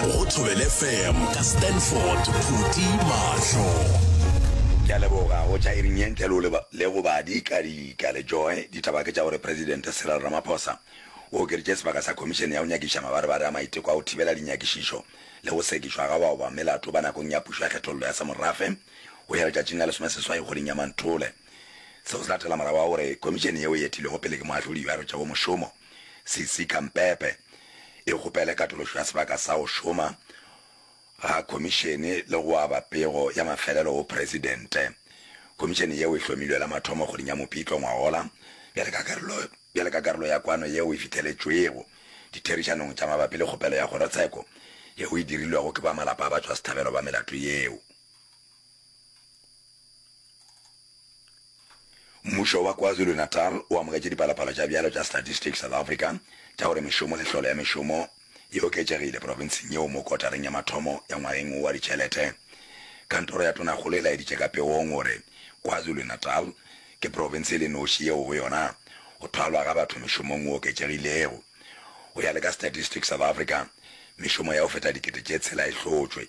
Go Thobele FM ka Stanford Phuti Mahlo. Ke a leboga go tšwa iring ye ntle le go le go ba dika dika le joe ditaba ke tša gore presidente Cyril Ramaphosa o okeditše sebaka sa khomišene ya go nyakiša mabarebare a maiteko a go thibela dinyakišišo le go sekišwa ga bao ba melato ba nakong ya pušo ya kgethollo ya semorafe go ya letšatšing la lesomeseswai kgweding ya Manthole seo se latela morago wa gore khomišene yeo e etilwego pele ke moahlodi yo a rwetšago mošomo Sisi Kampepe e kgopele katološo ya sebaka sa go šoma ga Khomišene le go aba pego ya mafelelo go Presidente. Khomišene yeo e hlomilwe la mathomo kgweding ya Mopitlo ngwagola bjale ka karolo bjale ka karolo ya kwano yeo e fitheletšwego ditherišanong tša mabapi le kgopelo ya kgorotsheko yeo e dirilwego ke ba malapa a batšwasehlabelo ba melato yeo. Mmušo wa KwaZulu-Natal o amogetše dipalopalo tša bjalo tša Statistics South Africa tša gore mešomo le tlholo ya mešomo e oketšegile profenseng yeo mo kotareng ya mathomo ya ngwageng wo wa ditšhelete. Kantoro ya Tonakgolo e laeditše ka pegong gore KwaZulu-Natal ke profense e le noši yeo go yona go thwalwa ga batho mešomong go oketšegilego. Go ya le ka Statistics South Africa, mešomo ya go feta dikete tše tshela e hlotšwe.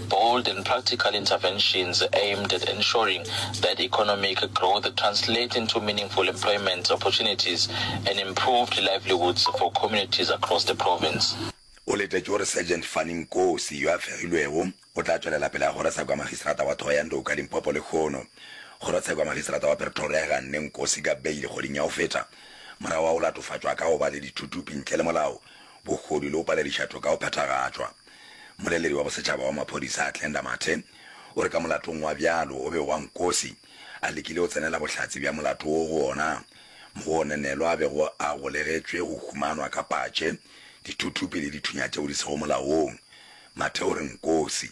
bold and practical interventions aimed at ensuring that economic growth translate into meaningful employment opportunities and improved livelihoods for communities across the province. O letetše gore Sergeant Fanny Nkosi, yo a fegilwego, o tla tšwelela pele a goresa kwa Magistrata wa Thohoyandou ka Limpopo lehono kgorotsheko ya Magistrata wa Pretoria e ganne Nkosi ka beile kgweding ya go feta morago ga go latofatšwa ka go ba le dithutupi ntle le molao, bogodu le go palediša toka go phethagatšwa. Mmoleledi wa bosetšhaba wa maphodisa Athlenda Mathe o re ka molatong wa bjalo o be wa nkosi a lekile go tsenela bohlatse bja molato wo go ona mo go onenelwa a bego a golegetšwe go humanwa ka patše, dithuthupi le dithunya tšeo di sego molaong. Mathe o re nkosi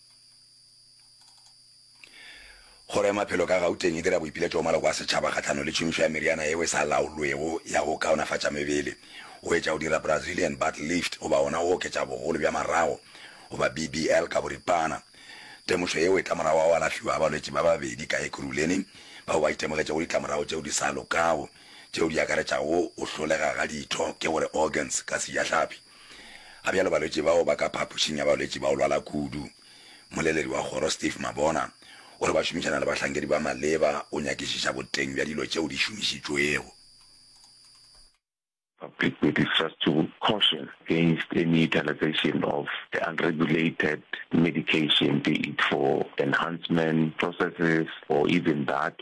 Kgoro ya Maphelo ka Gauteng e dira boipiletšo go maloko a setšhaba kgahlano le tšhomišo ya meriana yeo e sa laolwego ya go kaonafatša mebele, go etša go dira Brazilian butt lift goba gona go oketša bogolo bja marago goba BBL ka boripana. Temošo yeo e tla morago ga go alafhiwa ga balwetši ba babedi ka Ekurhuleni bao ba itemogetšego ditlamorago tšeo di sa lokago tšeo di akaretšago go hlolega ga ditho, ke go re organs ka sejahlapi. Ga bjalo balwetši bao ba ka phapošing ya balwetši ba go lwala kudu. Moleledi wa kgoro Steve Mabona o re ba šomišana le bahlankedi ba maleba go nyakišiša boteng bja dilo tšeo di šomišitšwego. Public be distrust to caution against any utilisation of the unregulated medication be it for enhancement processes or even that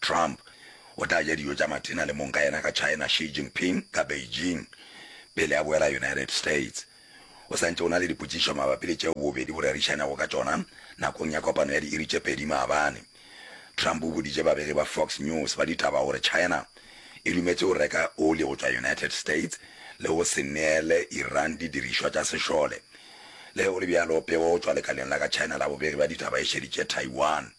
Trump o tla ja dijo tša mathina le mong ka yena ka China Xi Jinping ka Beijing pele a boela United States. O sa ntše o na le dipotšišo mabapi le tšeo bobedi bo rerišanego ka tšona nakong ya kopano ya diiri tše pedi maabane. Trump o boditše babegi ba Fox News ba ditaba gore China e dumetše go reka oli go tšwa United States le go se neele Iran didirišwa tša sešole. Le ge go le bjalo, pego go tšwa lekaleng la ka China la bobegi ba ditaba e šeditše Taiwan.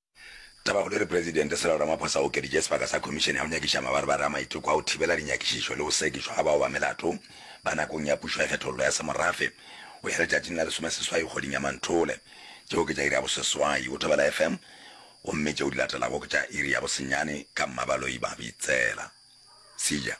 Tabakgolo e re Presidente Cyril Ramaphosa o okeditše sebaka sa Khomišene ya go Nyakiša Mabarebare a Maiteko a go Thibela Dinyakišišo le go Sekišwa ga Bao ba Melato ba nakong ya Pušo ya Kgethollo ya Semorafe go ya letšatšing la lesomeseswai kgweding ya Manthole. Tšeo ke tša iri ya boseswai go Thobela FM gomme tšeo di latelago ke tša iri ya bosenyane ka Mmabaloiba Bitsela. Sija.